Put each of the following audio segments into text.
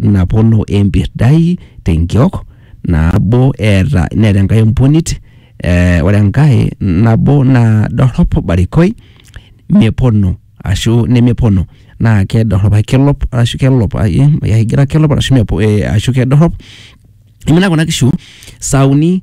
napolo empirdai tenkiok nabo eeta neeta enkae empunit eh, ore enkae nabo naa dorrop barikoi mepono ashu nemepono naa kedorrop ake kelop ashu kelop ai- eh, aigira kelop ashu mepo eh, ashu kedorrop imina kuna kishu sauni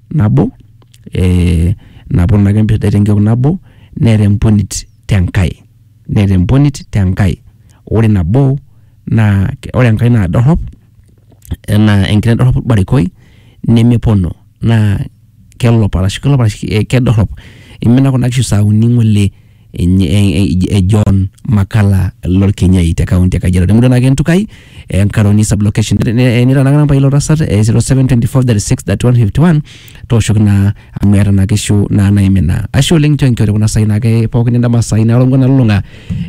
nabo, eh, naponu ake mpirdai tenkiok nabo, neeta emponit tenkae. Neeta emponit tenkae. Ore nabo, naa ore enkae naa dorrop, enaa enkiteng' dorrop orbarikoi, nemepono. Naa kelop arashu kelop arashu kedorrop. Imina kuna kishu sa uni ng'ole. e John Makala Lorkenyai te kaunti e Kajiado. Temurua naake Ntukai, e Nkaroni sublocation. Nitanakana mpa ilo tasat e 0724363151 tooshoki naa amu eeta naa kishu naa naimina. Ashe oleng nchoo enkiore kuna saai naake pookin endama saai naalong'ua nalulung'a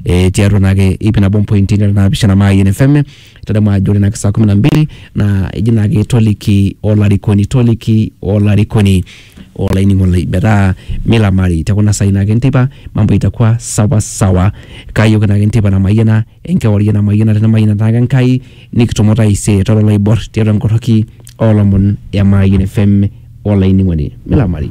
eh, tiatua naake ip nabo mpointi nara naapishana Mayian FM itadamu ajo ore naake saa kumi na mbili naa eji naake toliki olarikoni toliki olarikoni olainining'oni lai metaa milamari te kuna saai naake enteipa mambo itakuwa sawa sawa kaayooki naake enteipa namayiana enkewarie namayiana tenemayiana taake Enkai nikitumo taisere tara oloibor tiatua enkorroki oolomon e Mayian FM olainining'oni milamari.